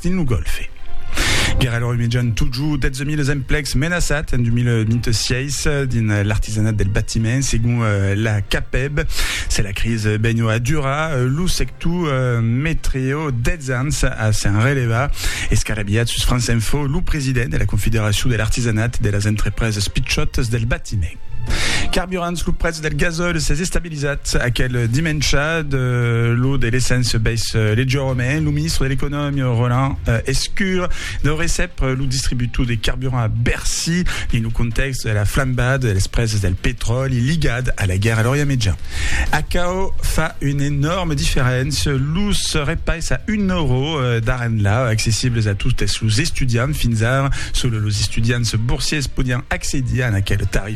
dins lo Gòlfe. Guèrra lor imejan totjor 12.000 es emplecs menaçats en 2026 dins l'artisanat del batiment, segon la CAPEB. Se la cris benho a durar, lo sector metreo 10 ans a s'en relevar. Escarabilhat sus France Info, lo president de la Confederacion de l'artisanat de las entrepreses pichòtas del batiment. Carburants, lo prètz del gasòl s'es estabilizat. Realizat aquel dimèncha de lo de l'Esens Bèis Legiorome, lo ministre de l'Economia Roland Escur deu recep lo distributor de carburant a Bercy dins lo contèxt de la flambada de las presas del petròli ligat a la guèrra a l'Orient Mejan. Aquò fa una enòrma diferéncia, los repais a un euro d'ara-enlà, accessibles a totes los estudiants, fins ara sols los estudiants borsiers podián accedir a aquel tarif.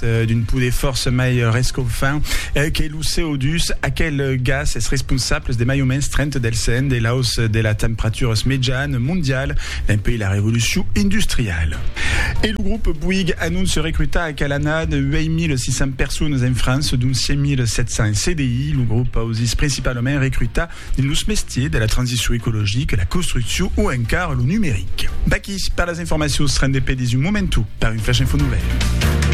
d'un poder fòrça mai rescofant que lo CO2, aquel gas es responsable de mai o mens 30 del cent de l'aus de la temperaturas mejan mondial dempuèi la revolucion industriala. E lo grop Bouygues anonce recrutar aquel annada 8.600 personas en França, dont 5.700 CDI. Lo grop ausís principalament recrutar dins los mestiers de la transicion ecologica, la construccion o encara lo numeric. Vaquís per las informacions, rendez-pe dins un momentu per un flash info novèl.